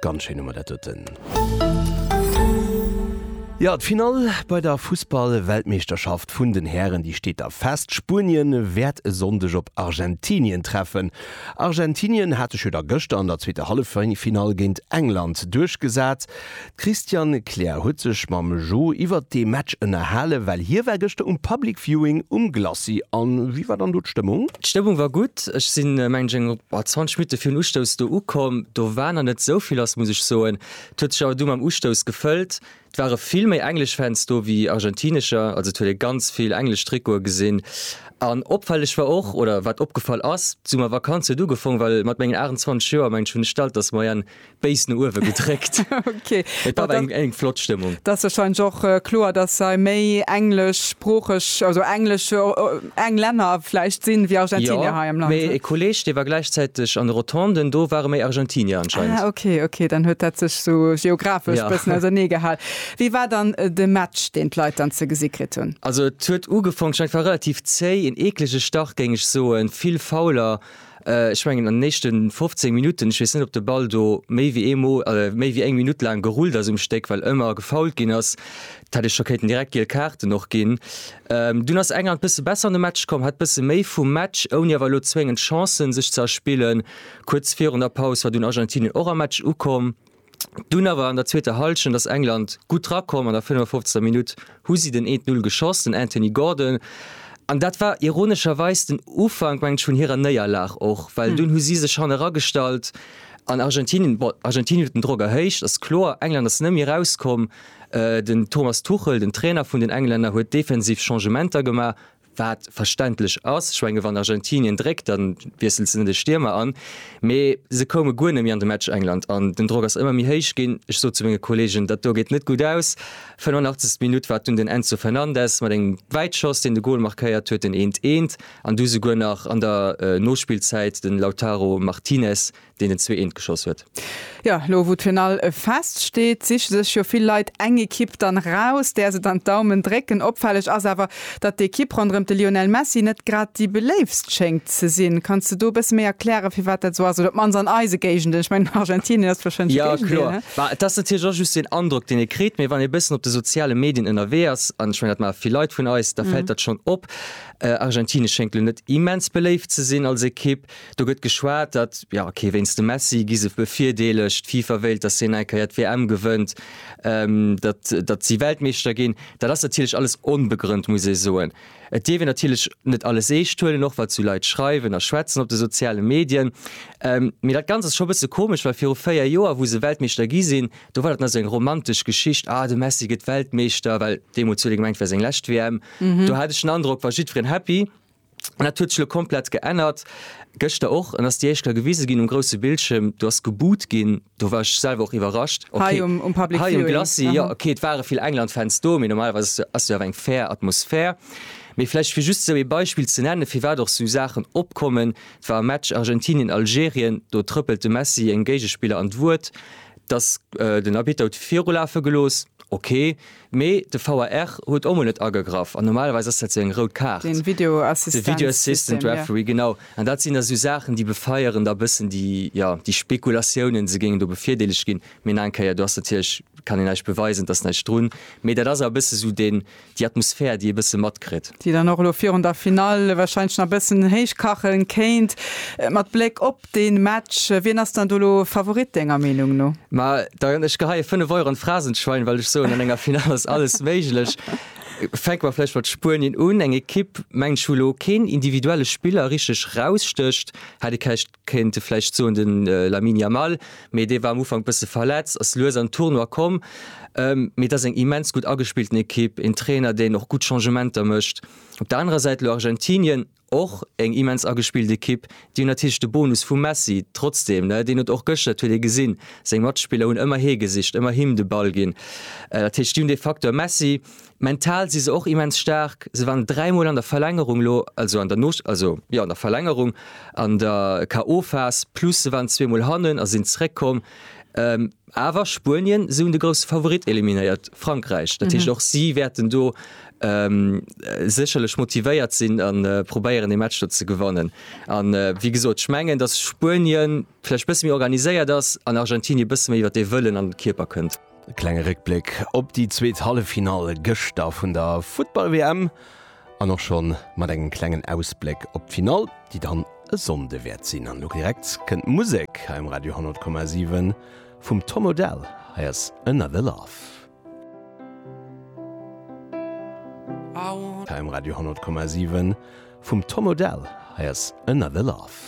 Ganz schéin hu mer dat doten. Jo, d'Finall bei der Fussball-Weltmeeschterschaft vun den Hären, déi steet da fest. Spuenien wäert e Sonndeg op Argentinien treffen. Argentinien hat sech jo da gëschter an der zweeter Halleffinall géint England duerchgesat. D'Christiane Kleer huet sech mam Jo iwwert dee Match ënnerhalen, well hie war gëschter um Public Viewing um Glacis. A wéi war dann do d'Stëmmung? D'Stëmmung war gutt. Ech sinn, mengen ech, eng 20 Minutte virun Ustouss do ukomm. Do war nach net esou vill lass, muss ech soen. Et huet sech awer du mam Ustouss gefëllt. Et ware vill méi englesch Fans do wéi argentinescher, also et huet ee ganz vill englesch Trikote gesinn. An opfälleg war och, oder wat opgefall ass, d'Summervakanz huet ugefong, well mat mengen 28 Joer, mengen ech, hunn ech d'Altersmoyenne béis no uewe gedréckt. Okay. Et war awer eng flott Stëmmung. Et ass warscheinlech och kloer, dass hei méi engleschsproocheg, also englesch, Englänner vläicht sinn, wéi Argentinier hei am Land. Jo, mee e Kolleeg, dee war gläichzäiteg an de Rotonden, do ware méi Argentinier anscheinend. Ah, okay, okay, dann huet dat sech esou geographesch e bëssen ausernee gehal. Wéi war dann de Match, deen d'Leit dann ze gesi kritt hunn? Also et huet ugefangen, ech war relativ zéi, en eeklege Start géing ech soen, vill Fouler. Ech mengen an den éischte 15 Minutten, ech weess net op de Ball do méi wéi eemol, méi wéi eng Minutt laang gerullt ass um Stéck, well ëmmer gefoult ginn ass, dat hätt ech scho kéinten direkt giel Kaarten och ginn. Dunn ass England bësse besser an de Match komm, hat bësse méi vum Match, ouni awer elo zwéngend Chancen sech ze erspillen. Kuerz virun der Paus war dunn Argentinien och am Match ukomm. Dunn awer an der zweeter Hallschent ass England gutt rakomm. An der 55. Minutt hu si den Eent-Null geschoss, den Anthony Gordon. An dat war ironescherweis den Ufank, mengen ech, vun hirer Néierlag och, well dunn hu si sech hanne ragestallt an Argentinien, bon, Argentinien huet den Drock erhéicht, ass kloer. England ass net méi erauskomm. Den Thomas Tuchel, den Trainer vun den Englänner, huet defensiv Changementer gemaach, wat verständlech ass, ech menge wann Argentinien dréckt, da wiesselt se net e Stiermer an, mee se koume guer net méi an de Match. England an den Drock ass ëmmer méi héich ginn. Ech sot zu menge Kolleegen, dat do geet net gutt aus. 85. Minutt war et dunn den Enzo Fernandez mat engem Wäitschoss, deen de Gol markéiert huet, den 1, 1 an du souguer nach an der Nospillzäit den Lautaro Martinez, deen en zwee eent geschoss huet. Jo, elo wou d'Finall fest steet, siche sech jo vill Leit eng Ekipp dann raus, där se dann d'Daumen drécken. Opfälleg ass awer, datt d'Ekipp ronderëm de Lionel Messi net grad déi beléiftst schéngt ze sinn. Kanns de do e bësse méi erklären, firwat dat esou ass? Oder op d'mannst an eise Géigenden, ech mengen, Argentinien ass warscheinlech e Géigendeel, ne? Jo, kloer. Bah, et ass natierlech och just den Androck, deen ee kritt. Mee wann ee e bëssen op de soziale Medien ënnerwee ass, an ech mengen, dat maache vill Leit vun eis, da fält dat schonn op. Argentinien schéngt elo net immens beléift ze sinn als Ekipp. Do gëtt geschwat, datt, jo ok, wéinst dem Messi gi se bevirdeelegt, d'FIFA wéilt, datt hien eng Keier d'WM gewënnt, datt, datt si Weltmeeschter ginn. Dat ass natierlech alles onbegrënnt, muss ee soen. Et dierf een natierlech net alles eescht huelen, och wat esou Leit schreiwen a schwätzen op de soziale Medien. Mee dat Ganzt ass scho e bësse komesch, well viru véier Joer, wou se Weltmeeschter gi sinn, do war dat nach esou eng romantesch Geschicht, ah de Messi gëtt Weltmeeschter, well deemools huet ee gemengt, et wär seng lescht WM. Do hat ech den Androck, war jiddwereen happy. An dat huet sech elo komplett geännert, gëschter och, an ass déi éischt Kéier gewise ginn um grousse Bildschierm, do ass geboot ginn, do war ech selwer och iwwerrascht. Hei um Public Viewing? Hei um Glacis, jo. Ok, et ware vill England-Fans do, mee normalerweis ass jo awer eng fair Atmosphär. Mee vläicht fir just esou ee Beispill ze nennen, firwat och esou Saachen opkommen, et war e Match Argentinien-Algerien, do trëppelt de Messi engem Géigespiller an d'Wuert, datt den Arbitter huet virulafe gelooss, ok. Mee de VAR huet och mol net agegraff an normalerweis ass dat esou eng rout Kaart. Den Video Assistance System. De Video Assistant Referee, genau. An dat sinn da esou Saachen, déi befeieren da e bëssen déi, jo, déi Spekulatiounen, se géingen do bevirdeelegt ginn. Mee nach eng Kéier, do ass natierlech, kann een näischt beweisen, et ass näischt drun. Mee dat ass awer e bësse sou den, déi Atmosphär, déi ee bësse matkritt. Déi dann och elo virun der Finall wahrscheinlech nach e bëssen héich kachen kéint. Mat Bléck op den Match. Wien ass dann do lo Favorit denger Meenung no? Ma da ech geheien 5 Euro an d'Phrasenschwein, well ech soen an enger Final ass alles méiglech. Fänke mer vläicht mat Spuenien un, eng Ekipp mengen ech wou lo keen individuelle Spiller richteg rausstécht. Hätt ee kächt kéinte vläicht soen den Lamine Yamal, mee dee war am Ufank bësse verletzt, ass lues an Tournoi komm. Mee et ass eng immens gutt agespillten Ekipp, een Trainer deen och gutt Changementer mécht. Op der anerer Säit lo Argentinien. Och eng immens agespillt Ekipp. Déi hunn natierlech de Bonus vum Messi trotzdeem, ne, deen huet och gëschter, dat huet ee gesinn, seng Matspiller hunn ëmmer hie gesicht, ëmmer him de Ball ginn. Dat heescht, déi hunn dee Facteur Messi. Mental si se och immens staark. Se waren dräi Mol an der Verlängerung elo, also an der no, also jo an der Verlängerung an der KO-Phas, plus se waren zwee Mol hannen a sinn zeréckkomm. Awer Spuenien, se hunn de grousse Favorit eliminéiert, Frankräich. Dat heescht, och si wäerten do sécherlech motivéiert sinn a probéieren, dee Match do ze gewannen. A wéi gesot, ech mengen, datt Spuenien vläicht e bësse méi organiséiert ass an Argentinie e bësse méi iwwer dee Wëllen an de Kierper kënnt. E klenge Réckbléck op déi zweet Halleffinall gëschter vun der Futtball-WM. An och schonn mat engem klengen Ausbléck op d'Finall, déi dann e Sonnde wäert sinn. An elo direkt kënnt d'Musek hei um Radio 100,7 vum Tom Odell. Hei ass Another Love. Hei um Radio 100,7 vum Tom Odell. Hei ass Another Love.